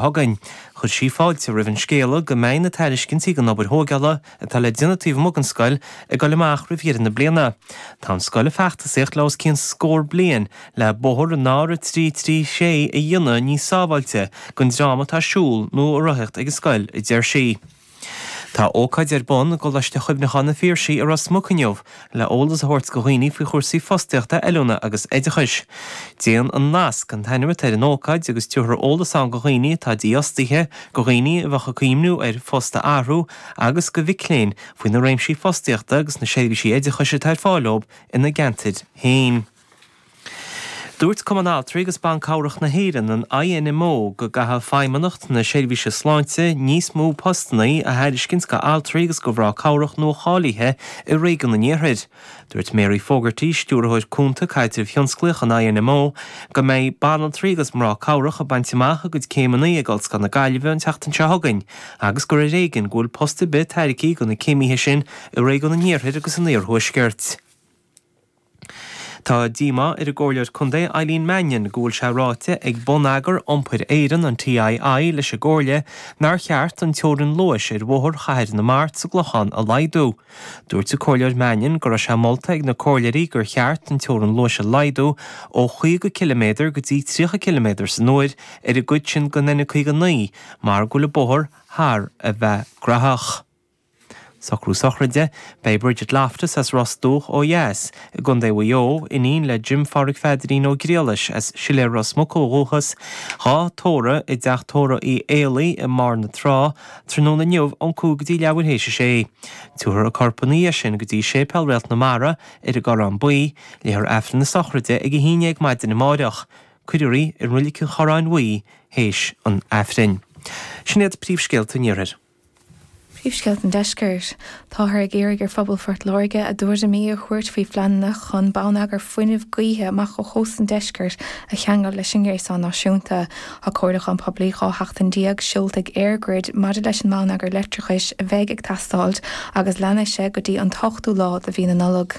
chugainn. Chuir sí fáilte roimh an scéal go mbeidh na tairiscintí don obair thógála atá le déanamh taobh amuigh den scoil ag dul amach roimh dheireadh na bliana. Tá an scoil ag feachtasaíocht le os cionn scór bliain le bóthar an R336 a dhéanamh níos sábháilte don dream atá ag siúl nó ag rothaíocht ag an scoil, a deir sí. Tá ócáid ar bun i gColáiste Chuimhneacháin an Phiarsaigh i Ros Muc inniu le eolas a thabhairt go dhaoine faoi chúrsaí fostaíochta, oiliúna agus oideachais. Déan an nasc, an t-ainm atá ar an ócáid agus tabharfar eolas ann go dhaoine atá dífhostaithe, go dhaoine a bheadh ag cuimhniú ar phost a athrú agus go mhic léinn faoi na réimsí fostaíochta agus na seirbhísí oideachais atá ar fáil dóibh ina gceantair féin. Dúirt Cumann Altraí agus Ban Cabhrach na hÉireann, an INMO, go gcaithfidh Feidhmeannacht na Seirbhíse Sláinte níos mó postanna a thairiscint d'altraí agus do mhná cabhrach nuacháilithe i réigiún an iarthair. Dúirt Mary Fogarty, Stiúrthóir Cúnta Caidrimh Thionsclaíoch an INMO, go mbeidh banaltraí agus mná cabhrach ag baint amach a gcuid céimeanna ag Ollscoil na Gaillimhe an tseachtain seo chugainn agus gur ar éigean go bhfuil post ar bith tairgthe do na céimithe sin i réigiún an iarthair agus an iarthuaiscirt. Tá díomá ar an gComhairleoir Contae Eileen Mannion go bhfuil sé ráite ag Bonneagar Iompair Éireann, an TII, leis an gComhairle nár cheart an teorainn luais ar Bhóthar Chathair na Mart sa gClochán a laghdú. Dúirt an Comhairleoir Mannion go raibh sé molta ag na Comhairleoirí gur cheart an teorainn luais a laghdú ó chaoga ciliméadar go dtí tríocha ciliméadar san uair ar an gcuid sin den N59 mar go bhfuil an bóthar thar a bheith graitheach. Socrú Sochraide, Beidh Bridget Loftus as Ros Dumhach ó dheas, i gContae Mhaigh Eo, iníon le Jim Phádraig Pheadairín Ó Griallais as Siléar Ros Muc ó dhúchas, dhá tórramh i dTeach Tórraimh Uí Éalaí i mBarr na Trá, tráthnóna inniu ón 5 go dtí leathuair théis a 6. Tabharfar a corp ina dhiaidh sin go dtí Séipéal Réalt na Mara, ar an gCorrán Buí, léifear Aifreann na Sochraide ag a haon déag maidin amáireach. Cuirfear í i Roilig an Chorráin Bhuí théis an Aifrinn. Sin iad príomhscéalta an iarthair. Príomhscéalta an Deiscirt, Táthar ag iarraidh ar phobal Phort Láirge a dtuairimí a thabhairt faoi phleananna chun bonneagar fuinnimh gaoithe amach ó chósta an Deiscirt a cheangal leis an ngréasán náisiúnta. Tá comhairliúchán poiblí 12 sheachtain seolta ag EirGrid maidir leis an mbonneagar leictreachais a bheidh ag teastáilt agus leanfaidh sé go dtí an t-ochtú lá de mhí na Nollag.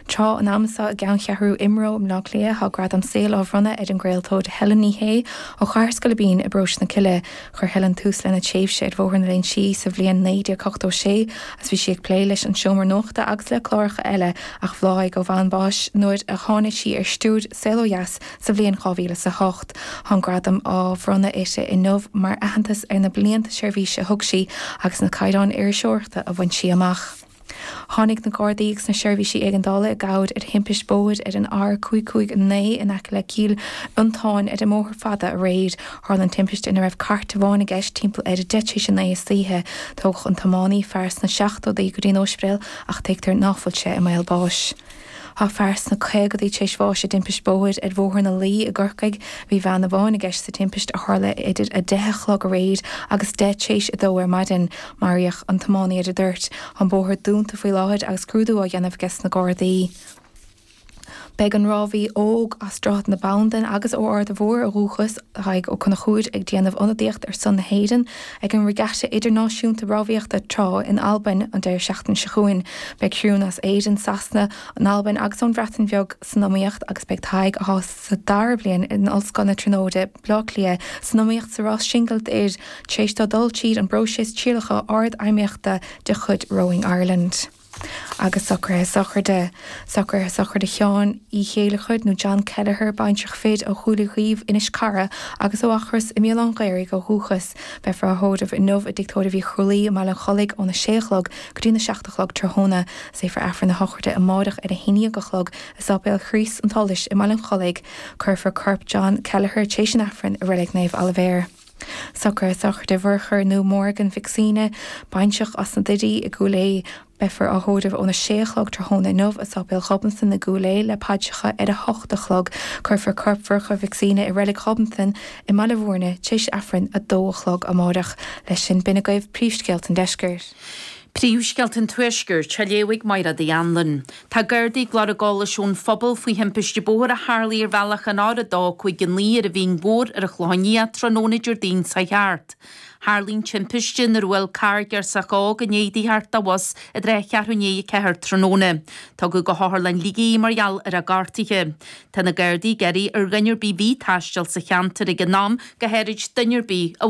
Tráth an ama seo i gceanncheathrú IMRO i mBleá Cliath tá gradam saoil á bhronnadh ar an gcraoltóir Helen Ní Shé ó Chathair Scoilbín i bParóiste na Cille. Chuir Helen tús lena tréimhse ar Bhóthar na Léinsí sa bhliain 1986 agus bhí sí ag plé leis An Seomra Nuachta agus le cláracha eile ach bhláthaigh ó bhonn báis nuair a tháinig sí ar stiúir Saol Ó Dheas sa bhliain 2008. Tá an gradam á bhronnadh uirthi inniu mar aitheantas ar na blianta seirbhíse a thug sí agus na caighdeáin iriseoireachta a bhain sí amach. Tháinig na Gardaí agus na Seirbhísí Éigeandála i gcabhair ar thimpist bóthair ar an R559 in aice le Cill Fhionntáin ar an mbóthar fada aréir. Tharla an timpiste ina raibh cairt amháin i gceist timpeall ar 10 tar éis a naoi istoíche. Tógadh an tiománaí, fear sna seachtóidí, go dtí an ospidéal ach tuigtear ná fuil sé i mbaol báis. Tá fear sna caogaidí tar éis bháis i dtimpist bóthair ar Bhóthar na Laoi i gCorcaigh. Bhí veain amháin i gceist sa timpist, a tharla idir 10 a chlog aréir agus 10 tar éis a dó ar maidin. Maraíodh an tiománaí ar an dtoirt. Tá an bóthar dúnta faoi láthair agus scrúdú á dhéanamh aige sna Gardaí. Beidh an rámhaí óg as Droichead na Bandan agus ó Arda Mhór ó dhúchas, Tadhg Ó Conchúir, ag déanamh ionadaíocht ar son na hÉireann, Ag an Regatta Idirnáisiúnta Rámhaíochta Trá in Albain an deireadh seachtaine seo chugainn, beidh criúnna as Éirinn, Sasana, an Albain agus ón Bhreatain Bheag san iomaíocht agus beidh Tadhg, atá sa dara bliain in Ollscoil na Tríonóide, Baile Átha Cliath, san iomaíocht sa rás singil d'fhir, tar éis dó dul tríd an bpróiseas trialacha ardfheidhmíochta de chuid Rowing Ireland. agus socruithe sochraide, socruithe sochraide Sheáin Uí Chéilleachair, nó John Kelleher, baintreach fir ó Chúil Uí Dhuibh, Inis Cara, agus ó Eachros i mBéal Átha an Ghaorthaidh ó dhúchas. Beifear á thórramh inniu i dtigh tórraimh Uí Chrualaoi i mBaile an Chollaigh óna sé a chlog go dtína seacht a chlog tráthnóna. Léifear Aifreann a shochraide amáireach ar a haon dhéag a chlog i Sáipéal Chríost an tSolais i mBaile an Chollaigh. Cuirfear corp John Kelleher, tréis an Aifrinn, i Reilig Naomh Oilibhéar. Socruithe sochraide Mhurchadh nó Morgan Mhic Suibhne, baintreach as na Doirí i gCúil Aodha. Beifear á thórramh óna sé a chlog tráthnóna inniu i Sáipéal Ghobnatan i gCúil Aodha le paidreacha ar a hocht a chlog. Cuirfear corp Mhurchadh Mhic Suibhne i Reilig Ghobnatan i mBaile Mhúirne tar éis Aifrinn a dó a chlog amáireach. Leis sin, b'in agaibh príomhscéalta an Deiscirt. Príomhscéalta an Tuaiscirt, á léamh ag Máire Uí Anluain. Tá Gardaí ag lorg eolais ón phobal faoi thimpiste bóthair a tharlaigh ar bhealach an R259 ar an Mhín Mhór ar an Chlochán Liath tráthnóna Déardaoin seo thart. Tharla an timpiste nuair a bhuail carr girseach óg i ndiaidh di theacht de bhus i dtrátha cheathrú i ndiaidh a ceathair tráthnóna. Tugadh go hOtharlann Shligigh í mar gheall ar a gortuithe. Tá na Gardaí ag iarraidh ar dhuine ar bith a bhí ag taisteal sa cheantar ag an am go háirid duine ar bith a